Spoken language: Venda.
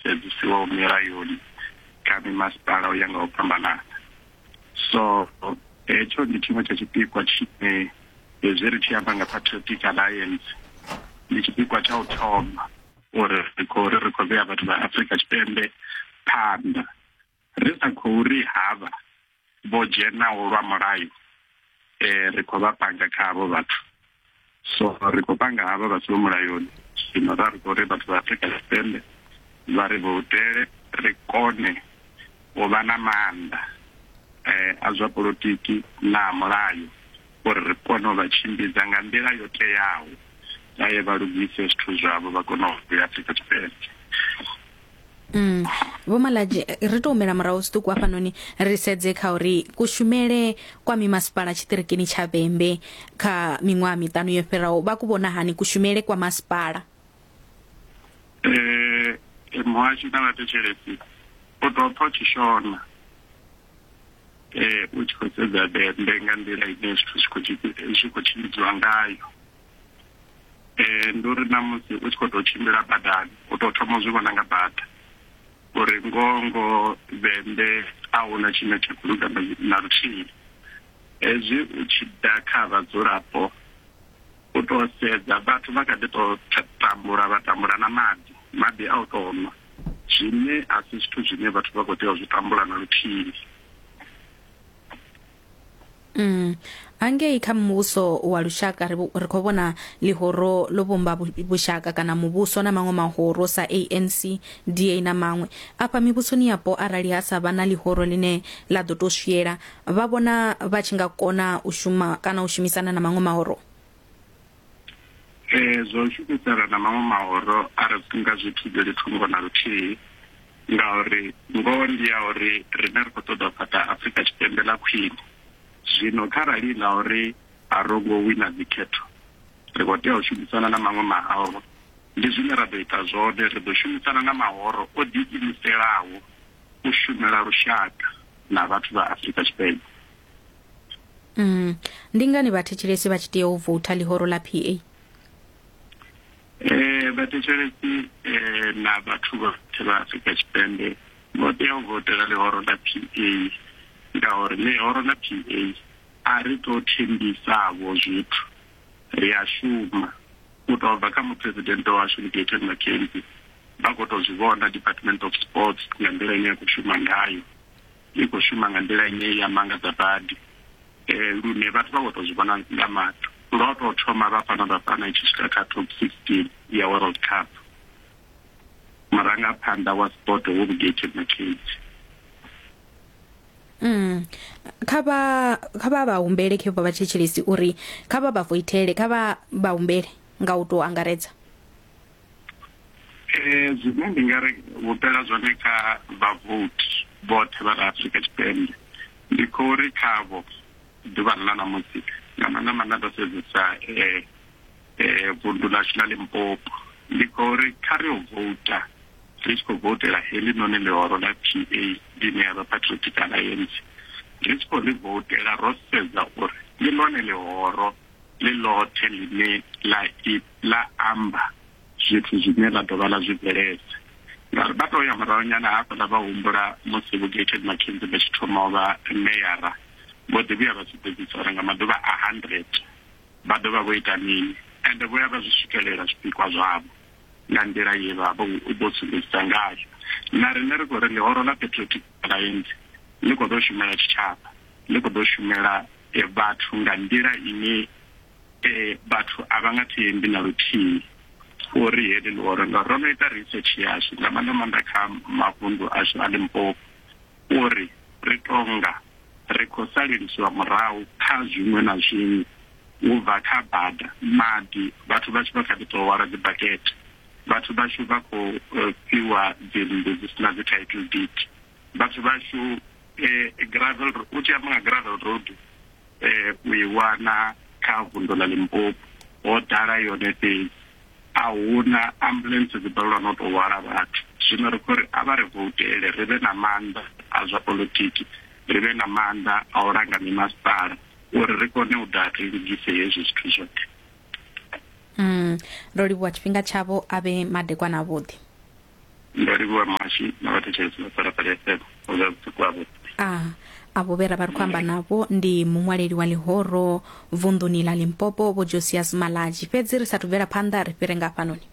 sedzisiwaho milayoni kha mimasipala u ya nga u fhambanana so hetsho ndi tshiṅwe tsha tshipikwa tshine hezwi ri tshi amba nga patriotic alliance ndi tshipikwa tsha u thoma uri ri khou ri ri khou vhea vhathu vha afrika tshipembe phanḓa ri sa khou ri havha vho dzhenaho lwa mulayo eh ri khou vha panga kha havho vhathu so ri khou panga havha vha siho mulayoni zwino ra ri khou ri vhathu vha afrika tshipembe vha ri voutele ri kone u vha na maanḓa eh a zwa polotiki na mulayo uri ri kone u vha tshimbidza nga nḓila yo teaho vha ye vha lugise zwithu zwavho vha kone u vhuya Afrika Tshipembe. Mm. Vho Malaji ri to humela murahu zwiṱuku hafhanoni ri sedze kha uri kushumele kwa mimasipala tshiṱirikini tsha Vhembe kha miṅwaha miṱanu yo fhiraho vha ku vhona hani kushumele kwa masipala eh muhasho na vhathetshelesi u tou pfa tshishona um u tshi khou sedza dende nga nḓila ine zwithu zwi khou zwi khou tshimbidziwa ngayo um ndi uri na musi u tshi khou tou tshimbila badani u tou thoma zwi vhona nga bada uri ngoho ngoho dende a hu na tshine tsha khou luga na luthihi hezwi u tshi ḓa kha vhadzulapo u to sedza vhathu vha kha ḓi to tambula vha tambula na maḓi maḓi a u to nwa zwine a si zwithu zwine vhathu vha khou tea u zwi tambula na luthihi Mm. Angei kha muvhuso wa lushaka ri ri khou vhona ḽihoro ḽo vhumba vhushaka kana muvhuso na maṅwe mahoro sa ANC, DA na maṅwe. Afha mivhusoni yapo arali ha sa vha na ḽihoro ḽine ḽa ḓo to swiela vha vhona vha tshi nga kona u shuma kana u shumisana na maṅwe mahoro um zwa u shumisana na maṅwe mahoro a ri nga zwi thivheli thungo na luthihi ngauri ngoho ndi ya uri rine ri khou ṱoḓa u fhaṱa afrika tshipembe ḽa khwine zwino kharali ḽa uri a ro ngo wina dzikhetho ri khou tea u shumisana na maṅwe mahoro ndi zwine ra ḓo ita zwone ri ḓo shumisana na mahoro o ḓiimiselaho u shumela lushaka na vhathu vha Afrika Tshipembe. Mm. Ndi ngani vhathetshelesi vha tshi tea u voutha ḽihoro ḽa PA? Eh, vhathetshelesi eh, na vhathu vhoṱhe vha Afrika Tshipembe vho tea u votela ḽihoro ḽa PA ngauri ḽihoro ḽa PA a ri tou thembisavho zwithu ri a shuma u tou bva kha muphuresidennde washu Ligeton McKenzie Vha khou tou zwi vhona Department of Sports nga nḓila ine ya khou shuma ngayo, i khou shuma nga nḓila ine ya mangadza badi um lune vhathu vha khou tou zwi vhona nga maṱo. Lwa u tou thoma Bafana Bafana i tshi swika kha top 16 ya World Cup, murangaphanḓa wa sport wo Bugate Mckenzie. Mm. kha vha kha vha vha humbele khe vha vha thetshelesi uri kha vha vha foithele kha vha vha humbele nga u tou angaredza eh, zwine ndi nga ri vhupela zwone kha vhavoti vhoṱhe vha ri afrika tshipembe ndi khou ri khavho ḓuvha ḽa ṋamusi nga maanḓa maanḓa ndo sedzesa um vundu ḽashu ḽa limpopo ndi khou ri kha ri o vouta ri tshi khou voutela heḽi noni ḽihoro ḽa p a ḽine ya vha patriotic alliance ri tshi khou ḽi voutela ro sedza uri ndi ḽone ḽihoro ḽi ḽothe ḽine ḽa ḽa amba zwithu zwine ḽa dovha ḽa zwi bveledza. Ngauri vha tou ya murahu nyana hafhaḽa vha humbula musi Vho Gayton McKenzie vha tshi thoma u vha meyara, vho ḓi vhuya vha sumbedzisa uri nga maḓuvha a 100 vha ḓo vha vho ita mini. Ende vho ya vha zwi swikelela zwipikwa zwavho nga nḓila ye vha vha vho sumbedzisa ngayo. Na riṋe ri khou ri ḽihoro ḽa Patriotic Alliance ḽi khou ḓo shumela tshitshavha, ḽi khou ḓo shumela vhathu nga nḓila ine um vhathu a vha nga thembi na luthihi uri heḽi ḽihoro ngauri ro no ita research yashu nga maanḓa maanḓa kha mavundu ashu a limpopo uri ri tonga ri khou salelisiwa murahu kha zwiṅwe na zwiṅwe u bva kha bada maḓi vhathu vhashu vha kha ḓi tou hwala dzibakete vhathu vhashu vha khou eh, fhiwa dzinnḓu dzi si na dzi title deed vhathu vhashu um gravel u tshi amba nga gravel road um u i wana kha vundo ḽa limpopo ho ḓala yone fhedzi a huna ambulance dzi balelwa no tou hwala vhathu zwino ri khou ri a vha ri voutele ri vhe na maanḓa a zwa politiki ri vhe na maanḓa a u langa mimasipala uri ri kone u ḓa ri lugise hezwi zwithu zwoṱhe mm. ro livhuwa tshifhinga tshavho a vhe madekwana avhuḓi ndo livhuwa muhashi na vhathetshelesi vha phalaphala fm ho zwa vhusiku havho a avho vhe ra vha ri khou amba navho ndi muṅwaleli wa ḽihoro vunḓuni ḽa limpopo vho josias malaji fhedzi ri sathu bvela phanḓa ri fhire nga hafhanoni